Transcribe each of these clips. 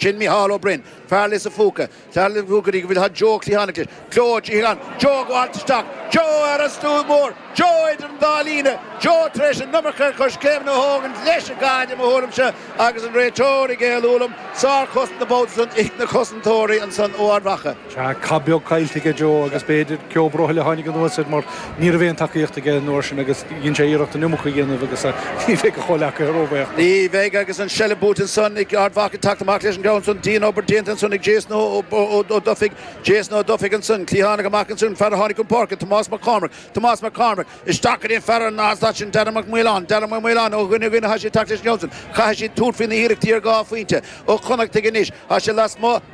Sin Micheál Ó Braoin, fear Lios an Phúca. Tar liom go dtí go bhfuil Joe cliathánach leis. Joe, a Chliatháin! Joe, ag gabháilt isteach. Joe, ar an stua mór! Joe, idir an dá líne! Joe, tar éis an iomarca coiscéimeanna a thógaint leis an gcaid, i mo thuairimse, agus an réiteoir ag aontú liom. Sár-chosaint an babhta san, ag na cosantóirí ansan ó Ard Mhacha. Tá cath beag caillte aige, Joe, agus b'fhéidir ceo brothaill a tháinig anuas air mar ní raibh aon tacaíocht aige an uair sin agus dhein sé iarracht an iomarca a dhéanamh agus ní bheidh a chomhleacaithe róbhaoch. Ní bheidh agus an seilbh buaite ansan ag Ard Mhacha ag teacht amach leis an gceann san. Dian-obair déanta ansan ag Jason Ó Dufaigh. Jason Ó Dufaigh ansan. Cliathánach amach ansin, an fear a tháinig chun páirce, Tomás Mac Cormaic. Tomás Mac Cormaic. Isteach go dtí an fear ar an slat sin, Darragh Mac Maoláin. Darragh Mac Maoláin. Ó dhuine go duine atá siad ag teacht leis an gceann san. Caithfidh siad tabhairt faoi na hiarrachtaí ar dhá phointe. Ó Connachtaigh anois. Tá siad lasmuigh.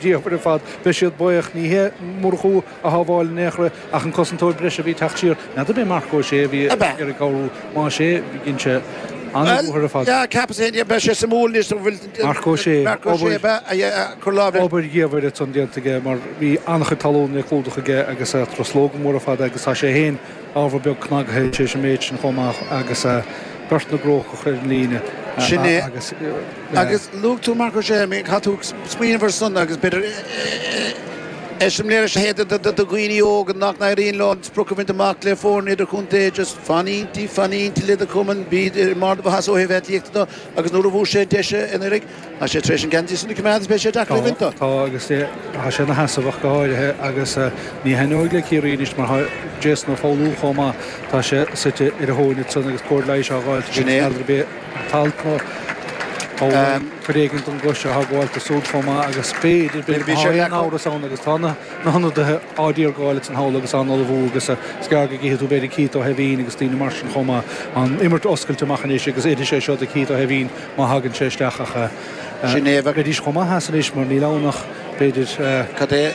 dheirfir ar fad. Beidh siad baoch. Ní hé Murchú a shábháil in aon chor ach an cosantóir breise a bhí ag teacht siar. N'fheadar ab é Marc Ó Sé a bhí ar ag cabhrú. Más é, dhein sé an-bhóthar ar fad. Marc Ó Sé, Obair dhiamhair atá déanta aige mar bhí an-chuid talún le clúdach aige agus na truslóga móra fada agus tá sé féin, ábhar beag cnagtha, tar éis an méid sin chomh maith agus beirt na gCrócach ar an líne agus. Luaigh tú Marc Ó Sé, caithfidh tú smaoineamh air san agus b'fhéidir eiseamláir a leithéid do dhaoine óga nach n-éiríonn leo an sprioc a bhaint amach le foirne idirchontae, just fan inti, fan inti le do chumann, bí i mbarr do mhaitheasa ó thaobh aclaíochta do agus nuair a fuair sé deis a n-éiric. Tá sé tar éis an geansaí san a choimeád agus beidh sé deacair é a bhaint dó. Tá agus tá sé ina sheasamh ach go háirithe agus ní thaitneoidh le Ciarraí anois mar tá Jason Ó Foghlú chomh maith, tá sé suite ar a thóin ansin agus cóir leighis á fháilt aige agus n'fheadar ab é an t-alt nó cuid éigin don gcois atá ag gabháilt dó súd chomh maith agus b'fhéidir, b'fhéidir, má tá aon amhras ann agus tá na hionadaithe á dtiargáil acu thall agus á n-ullmhú agus is gearr go gcífidh tú b'fhéidir Keith Ó hEimhín agus daoine mar sin chomh maith tá an imirt oscailte amach anois agus oirfidh sé seo do Keith Ó hEimhín má thagann sé isteach ach. Ginevra. Bheidís chomh maith as anois mar níl ann ach, b'fhéidir, Cad é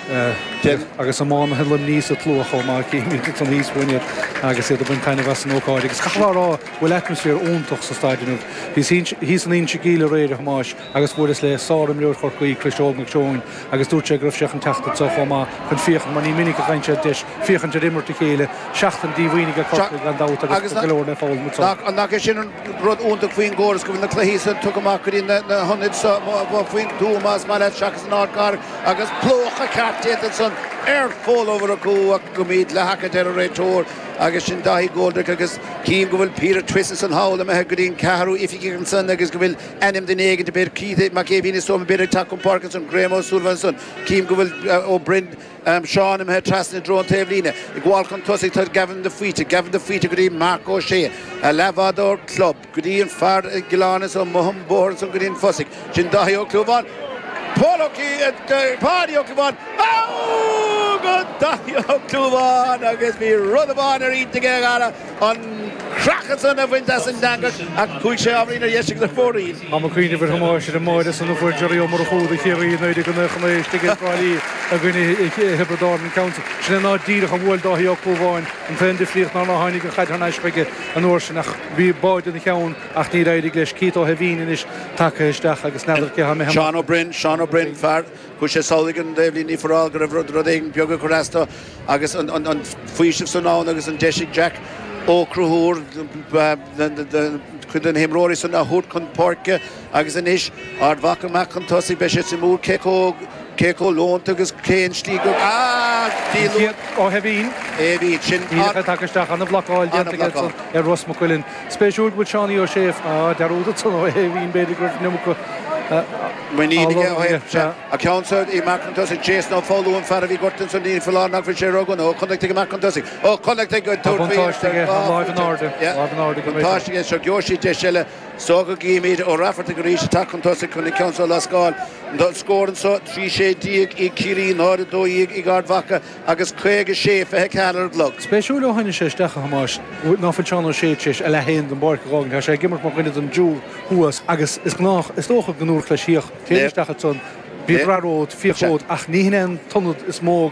den. Agus iománaithe Luimnigh sa tslua chomh maith, címid ansan thíos fúinn iad agus iad ag baint taitneamh as an ócáid. Agus caithfidh mé a rá go bhfuil atmaisféar iontach sa staid inniu. Bhíos thíos in Inse Geimhleach aréir, a Thomáis, agus bhuaileas le sárimreoir Chorcaí, Cris Óg Mac Seoin, agus dúirt sé go raibh sé chun teacht anseo chomh maith chun féachaint mar ní minic a fhaigheann siad deis féachaint ar imirt a chéile. Seachtain díomhaoin aige Corcaigh gan dabht agus go leor le foghlaim anseo. Ach nach é sin an rud iontach faoin gcóras go bhfuil na cluichí san tugtha amach go dtí na hionaid seo faoin tuath más maith leat seachas an ardchathair agus plúchadh ceart déanta ansan ar Phól Ó Murchú ach go mbíd leathtaca deir an réiteoir agus sin Daithí Coldrick agus cím go bhfuil Peter Twistle ansan thall imithe go dtí an ceathrú oifigeach ansan agus go bhfuil ainm duine éigint a bheidh críche Mac Aoibhín is dóigh liom a bheidh ag teacht chun páirce ansan, Graham Ó Súilleabháin ansan, cím go bhfuil Ó Broin, Seán imithe trasna i dtreo an taobhlíne. Ag gabháil chun tosaigh tá Gavin de Faoite, Gavin de Faoite go dtí Marc Ó Sé, a leathbhádóir club, go dtí an fear i gCill Áine nó soir an bóthar ansan go dtí an Fosaidh, sin Dáithí Ó Clúmháin, Paul Ó Páidí Ó Clúmháin, Aaaaaaaaa go Dáithí Ó Clúmháin agus bhí rud amháin ar intinn aige a dhara, an creathadh ansan a bhaint as an eangach ach chuaidh sé ábhairín ar dheis ag an bhfear. Táim ag cuimhneamh a Thomáis, ar an mbáire san a fuair Jerry Ó Murchú do Chiarraí in éiric an fhéachana istigh ag Trá Lí i gcoinne Thiobraid Árann an tseans. Sin é go díreach a bhuail Dáithí Ó Clúmháin, an t-aon difríocht ná nár tháinig an chaid thar n-ais chuige an uair sin ach bhí báire ina cheann ach níor éirigh leis. Keith Ó hAimhín anois tagtha isteach agus n'fheadar cé tháim a shéanadh. Seán Ó Broin, Seán Ó Broin, fear, chuaigh sé sall go an dtaobhlíne faoi mar go raibh rud éigin beag ag cur as dó. Agus an faoiseamh san ann agus an deis ag Jack Ó Conchúir cuid de na himreoirí san a thabhairt chun páirce agus anois Ard Mhacha amach chun tosaigh beidh sé suimiúil cé chomh leonta agus cé an slí go ah díol úr. Siad ó thaobh Iain. É bhíd sin. Niall a bheith tagtha isteach ana-bhlocáil déanta aige ar Ros Mac Cuilinn. Spéisiúil go bhfuil Seánie Ó Séaghdha á dearúd ansan ó thaobh Iain b'fhéidir go raibh ionam acu á lorg aige. An ceann so amach chun tosaigh, Jason Ó Foghlú an fear a bhí gortaithe ní foláir nach bhfuil sé ró-dhona, Ó Connachtaigh amach chun tosaigh, Ó Connachtaigh ag Tá tabhairt faoi buntáiste aige ná láimh in airde, fuaite. Yeah. láimh in airde go minic. Buntáiste aige anseo. Gheobhaidh siad deis eile so go gcífimid. Ó Raifeartaigh arís ag teacht chun tosaigh chun an ceann so a lascáil. An an scór anseo, 13 sé ag Ciarraí, 0, 12 ag Ard Mhacha agus 56, 24 ar an gclog. Spéisiúil ó tháinig sé isteach, a Thomáis, ná fuil Seán Ó Sé tar éis a leath féin den bpáirc a dh'fhágaint. Tá sé ag imirt mar dhuine den dtriúr thuas agus is dócha, go ndúradh leis fíoch. Téigh isteach ansan, bíodh rath romhat, fíoch romhat, ach ní hin é an t-ionad is mó a.